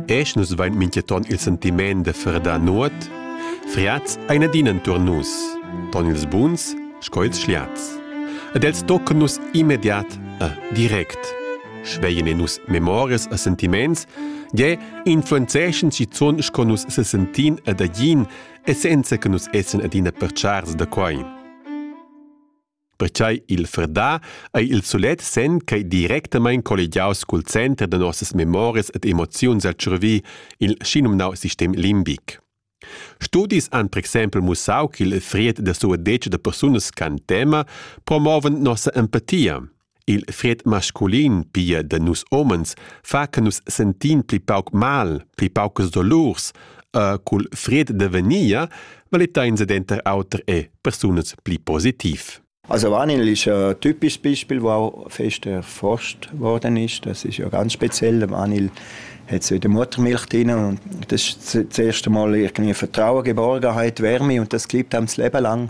Esch nus vain minchaton il sentimaint da ferdar nuot, friats ein adina entur nus, ton ils buns sco ils schliats. Ed els tocan nus immediat e direct. Schveien in nus memorias e sentiments, ge influenzeschen schizun sco nus se sentin ed agin, e senza che nus essen adina perchars da quai. Pertschei il Frdà ei il sulet senn ch'ei directamein collegiaus cul center da nossas memorias ed emoziuns el tschurvi, il schinumnau sistem limbic. Studis han per exempel mussau ch'il fried da suadetsch da persunas can tema promoven nossa empatia. Il fried masculin, pia da nus homens, fa che nus sentin pli pauc mal, pli paucas dolurs. E cul fried da venia valita ins denter auter e persunas pli positiv. Also Wanin ist ein typisches Beispiel, wo fest erforscht worden ist. Das ist ja ganz speziell. Wanil hat so in der Muttermilch drin und das ist das erste Mal irgendwie Vertrauen, Geborgenheit, Wärme und das gibt einem das Leben lang.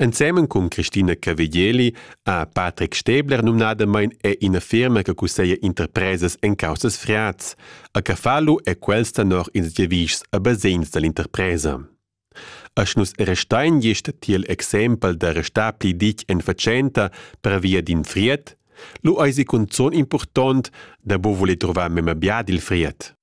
Ensemen cun Christina Cavegeli ha Patrick Stäbler numnadamain è ina firma che cusseglia interpresas en caussas friats. A Cafalu è quels tenor ils giavischs a basegns da l'interpresa. Asch nus restain gist tiel exempel da restar pli ditg en fatschenta pervia d'in fried, lu eisi cunzun impurtont da bu voler trovar memia bia dil fried.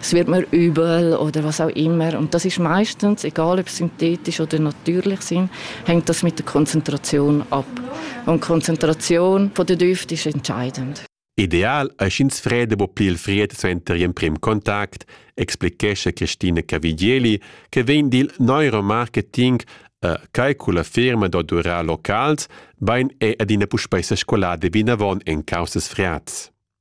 Es wird mir übel oder was auch immer. Und das ist meistens, egal ob synthetisch oder natürlich sind, hängt das mit der Konzentration ab. Und Konzentration von der Düfte ist entscheidend. Ideal è sch'ins freda bo pli il fried suenter gl'emprim contact, explichescha Christina Cavigieli, che vegn dil neuromarketing uh, quai culla firma d'odurar locals, bain è adina puspei sa scolada vinavon en causas friats.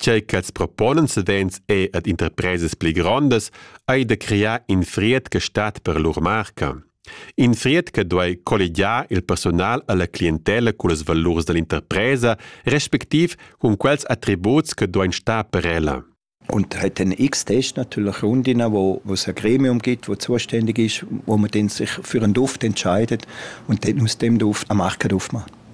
Tgei ch'els proponan savens è ad interpresas pli grondas ei da crear in fried che stat per lur marca. In fried che duei colligiar il personal alla clientella cullas valurs dall'interpresa respectiv cun quels attributs che duein star per ella. Und hat einen X-Test natürlich Rundinnen, wo, wo es ein Gremium gibt, wo zuständig ist, wo man dann sich für einen Duft entscheidet und dann aus dem Duft eine Marke drauf macht.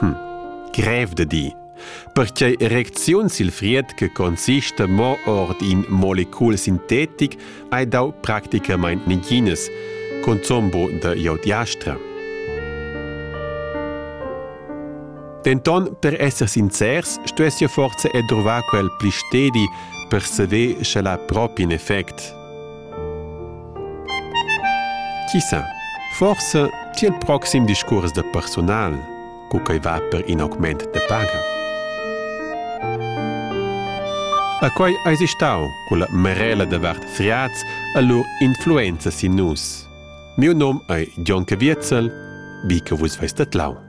Hm. Grev da dir. Pertgei erecziun sil fried che consista mo ord in molecul sintetic hai dau practicamain neginas, consombo da iodiastra. Denton, per esser sincers, stuess jo forse edruvar quel pli stedi per seder sche la propi in effect. Chi sa, forsa ti il proxim discurs da personal, cu quei va per in augment de paga. A quei eis stau culla merela de vart friaz a lur influenza sin nus. Miu nom ei Gion Caviezel, vi che vus veis tedlau.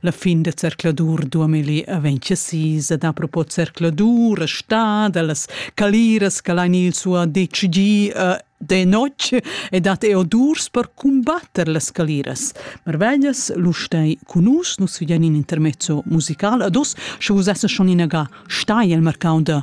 La fin da zercladur 2026 ed apropos zercladur e sta da las caliras che l'ha il suo decidi uh, de notg e dat eo durs per combatter las caliras. Marveglias, lu stai cun nus, nus figen in intermezzo musical ad us, sche vus esser schon inaga stai al mercau da